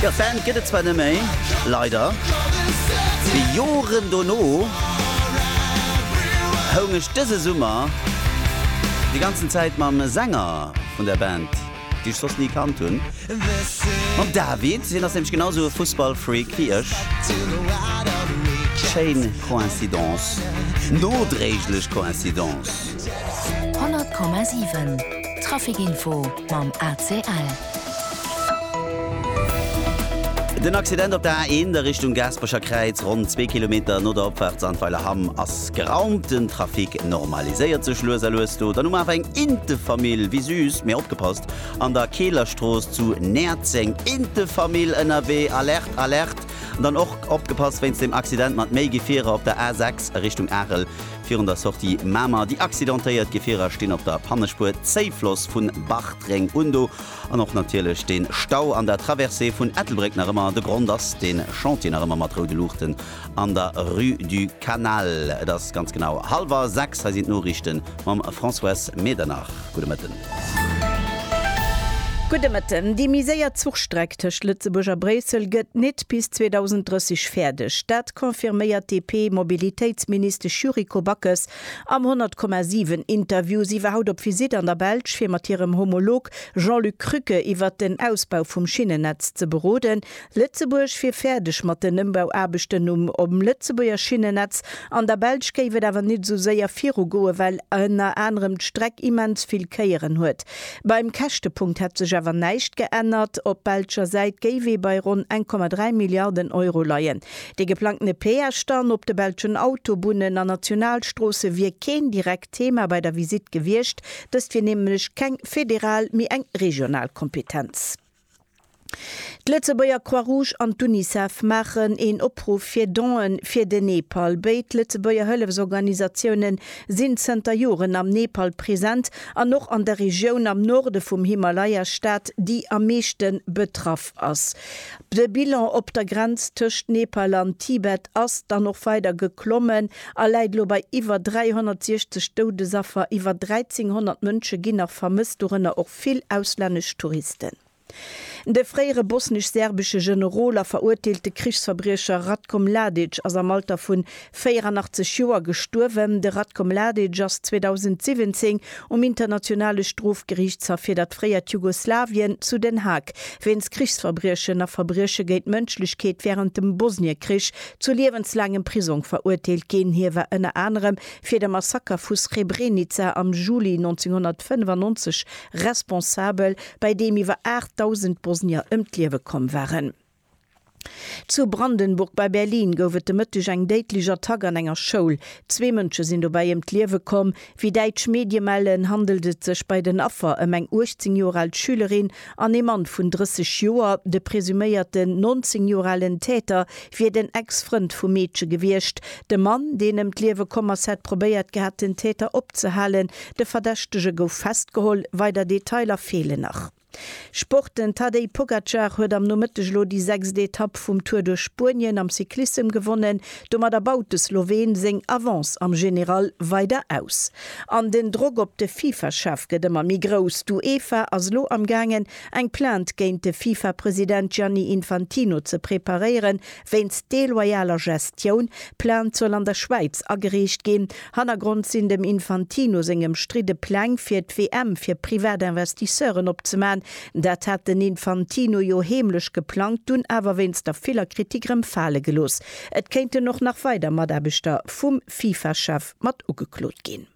Jo, d'Band gëtt et zwar net méi, leider. Mee Joren dono houng ech dëse Summer déi ganzen Zäit mam Sänger vun der Band, déi ech soss ni kannt hunn, mam David, hien ass nämlech genau sou e Fussballfreak wéi ech, schéin Coïncidence, nodréiglech Coïncidence. 100,7 Trafficinfo mam ACL. Den Accident op der A1 a Richtung Gaasperecher Kräiz, ronn zwee Kilometer no der Opfaart Sandweiler Hamm, ass geraumt. Den Trafic normaliséiert sech lues a lues do. Dann hu mer awer eng Intefamill, wéi süß, mee opgepasst, an der Keelerstrooss zu Näerzeng. Intefamill ënnerwee, Alerte, Alerte! Dann och opgepasst wéinst dem Accident mat méi Gefierer op der A6 a Richtung Arel. Virun der Sortie Mamer, déi accidentéiert Gefierer stinn op der Pannespuer, Zéifloss vun Bartreng un do an och natierlech de Stau an der Traversée vun Ettelbréck nach ëmmer. De Grond ass de Chantier nach ëmmer mat roude Luuchten an der Rue du Canal. Et ass ganz genau hallwer sechs. Hei sinn d'Noriichte mam Françoise Medernach. Gudde Mëtten. Gudde Mëtten. Déi méi séier Zuchstreck tëscht Lëtzebuerg a Bréissel gëtt nit bis 2030 fäerdeg. Dat. confirméiert d'DP-Mobilitéitsministesch Yuriko Backes am 100,7 Interview. Si war haut op Visitt an der Belsch, fir mat hirem Homolog Jean-Luc Krücke iwwert den Ausbau vum Schinnennetz ze beroden. Lëtzebuerg wier fäerdeg mat den Ëmbauaarbechten um um Lëtzebuerger Schinnennetz. An der Belsch géif et awer net esou séier virugoen, well ënner anerem d'Streck immens vill Kéieren huet. Beim Käschtepunkt hätt sech awer näischt geännert. Op belscher Säit géif ee bei ronn 1,3 Milliarden Euro leien. Dee geplangtene Peage dann op de belschen Autobunnen an Nationalstroosse wier keen direkt Thema bei der Visitt gewiescht. Dëst wier nämlech keng federal, mee eng regional Kompetenz. D'Lëtzebuerger Croix-Rouge an d'Unicef maachen een Opruff fir Donen fir den Nepal. Béid Lëtzebuerger Hëllefsorganisatioune sinn zënter Joren am Nepal present an och an der Regioun am Norde vum Himalaya-Staat, déi am meeschte betraff ass. De Bilan op der Grenz tëscht Nepal an Tibet ass dann och weider geklommen. a läit elo bei iwwer 360 Doudesaffer, iwwer 1.300 Mënsche ginn nach vermësst, dorënner och vill auslännesch Touristen. De fréiere bosnesch-serbesche Generol a verurteelte Krichsverbriecher Ratko Mladic ass am Alter vun 84 Joer gestuerwen. De Ratko Mladic ass 2017 um Internationale Strofgeriichtshaff fir dat fréiert Jugoslawien zu Den Haag wéinst Krichsverbriechen a Verbrieche géint d'Mënschlechkeet wärend dem Bosniekrich Zu liewenslaangem Prisong verurteelt ginn. Hie war ënner anerem fir de Massaker vu Srebrenica am Juli 1995 responsabel, bei deem iwwer 8.000 Bosnier ëm d'Liewe komm waren. Zu Brandenburg bei Berlin gouf et de Mëtteg eng déidlech Attack an enger Schoul. Zwee Mënsche sinn dobäi ëm d'Liewe komm, Wéi däitsch Medie mellen, handelt et sech bei den Affer ëm eng 18 Joer al Schülerin an ee Mann vun 30 Joer. De presuméierten 19 Joer alen Täter wier den Ex-Frënd vum Meedche gewiescht. De Mann, deen ëm d'Liewe komm ass, hätt probéiert gehat, den Täter opzehalen. De Verdächtege gouf festgeholl, weider Detailer feelen nach. Sport, Den Tadej Pogacar huet am Nomëtteg elo déi sechst Etapp vum Tour duerch Spuenien am Cyclissem gewonnen. Domadder baut de Sloween seng Avance am General weider aus. An den Drock op de Fifa-Chef gëtt ëmmer méi grouss. D'UEFA ass elo amgaangen, eng Plainte géint de Fifa-President Gianni Infantino ze preparéieren, Wéinst deloyaler Gestioun Plainte soll an der Schwäiz agereecht ginn. Hannergrond sinn dem Infantino seng ëmstridde Pläng fir d'WM fir privat Investisseuren opzemachen. Dat hat den Infantino jo heemlech geplangt, dunn awer wéinst der viller Kritik rëm fale gelooss. Et kéinten och nach weider Mataarbechter vum Fifa-Chef mat ugeklot ginn.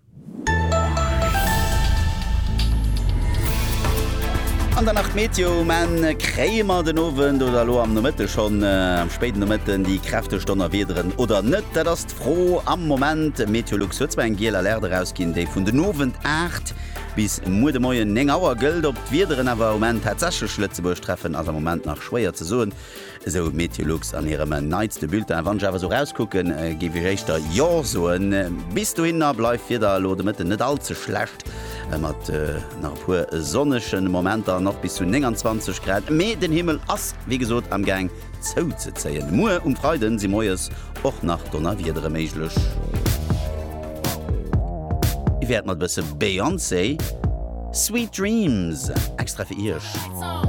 An dann nach d'Meteo um Enn. Kréie mer den Owend oder elo am Nomëtte schonn am spéiden Nomëtten déi kräfteg Donnerwiederen oder net? Dat ass d'Fro am Moment. Meteolux huet zwar eng giel Alerte erausginn, déi vun den Owend 8 bis muer de Moien 9 Auer gëllt. Ob d'Wiederen awer um Enn tatsächlech Lëtzebuerg treffen, ass am Moment nach schwéier ze soen. Esou d'Meteolux an hirem neitste Bulletin. Wann ech awer esou erauskucken, géif ech éischter Jo soen. Bis dohinner bleift d'Wieder elo de Mëtten net all ze schlecht, mat nach e puer sonnege Momenter an och bis zu 29 Grad. Mee den Himmel ass wéi gesot am Gaang zouzezéien. Muer um Freide si moies och nach Donnerwiedere méiglech. Ech wäert mat e bësse Beyoncé Sweet Dreams extra fir Iech.